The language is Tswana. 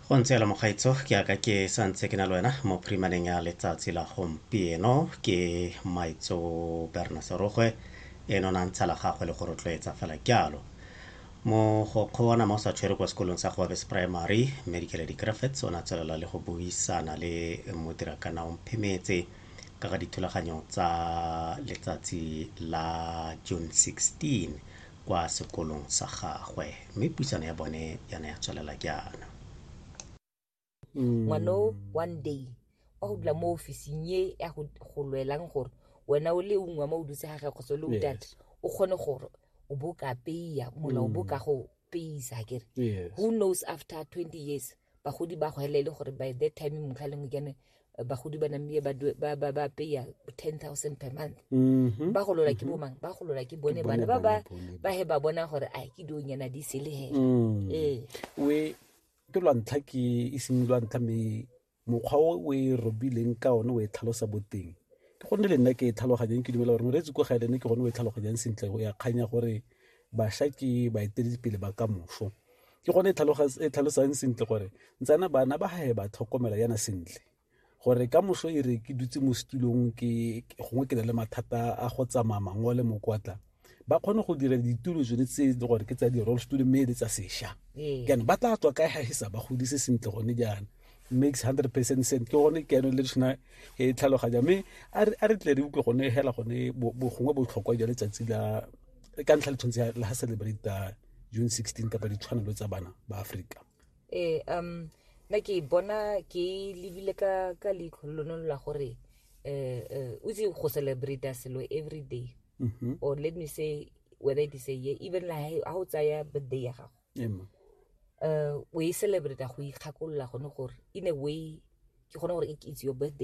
go ntse yalo mokgaitso ke aka ke sa ntse ke na le wena mo primaneng ya letsatsi la gompieno ke maitso berna serogwe e nona ntsha la gagwe le go rotloetsa fela jalo mogokgo wa nama o sa tshwere kwa sekolong sa goabes primary mme dikeledi graffits o ne a tswelela le go buisana le modirakana o mphemetse ka ga dithulaganyo tsa letsatsi la june 16 kwa sekolong sa gagwe mme puisano ya bone ya ne ya tswelela jaana ngwana o one day wa go dula mo ofising e ya go go lwelang gore wena o le ungwa mo o dutse ga ge kgotsa o le o data o kgone gore o bo ka peya mola o bo ka go peyisa kere who knows after twenty years bagodi ba go hela e le gore by that time motlha lengwe kene bagodi ba namie ba peya ten thousand per month mm-hmm. ba golola ke mm-hmm. bomang ba golola ke bone bana ba ba ba he ba bona gore a ke dio nyana di se le he mm. ee we ke lwa ntlha ke e seng lwa ntlha me mokgwa o o e robileng ka one o e tlhalosa boteng ke gonne le nna ke e tlhaloganyang ke dumela gore moreetsi ko ga elene ke gone o e tlhaloganyang sentle o ya kganya gore bašwa ke baeteledipele ba ka moso ke gone e tlhalosang sentle gore ntsana bana ba gae ba tlhokomela yana sentle gore ka moso e re ke dutse mo setulong gongwe ke na le mathata a go tsamaya mango le mokwatla ba kgone go dira ditulo tsone tse le gore ke tsa di-roll stulo mme le tsa sešwa ee. jaanong ba tla tswa kae ga e sa ba godise sentle gone jaana makes hundred percent sense ke gone ke yano le tshwana e tlhaloganya mme a re tle re utlwe gone hela gone gongwe botlhokwa jwa letsatsi la ka ntlha le tshwanetse la celebrate june 16 kapa ditshwanelo tsa bana ba aforika ee um nna ke bona ke lebile ka ka leitlho lone la gore um um o itse go celebrate selo every day mm-hmm. or let me say whether it is a year even like ha o tsaya birthday ya gago um o e celebrate go ikgakolola gone gore in a way ke gone gore it's your birthday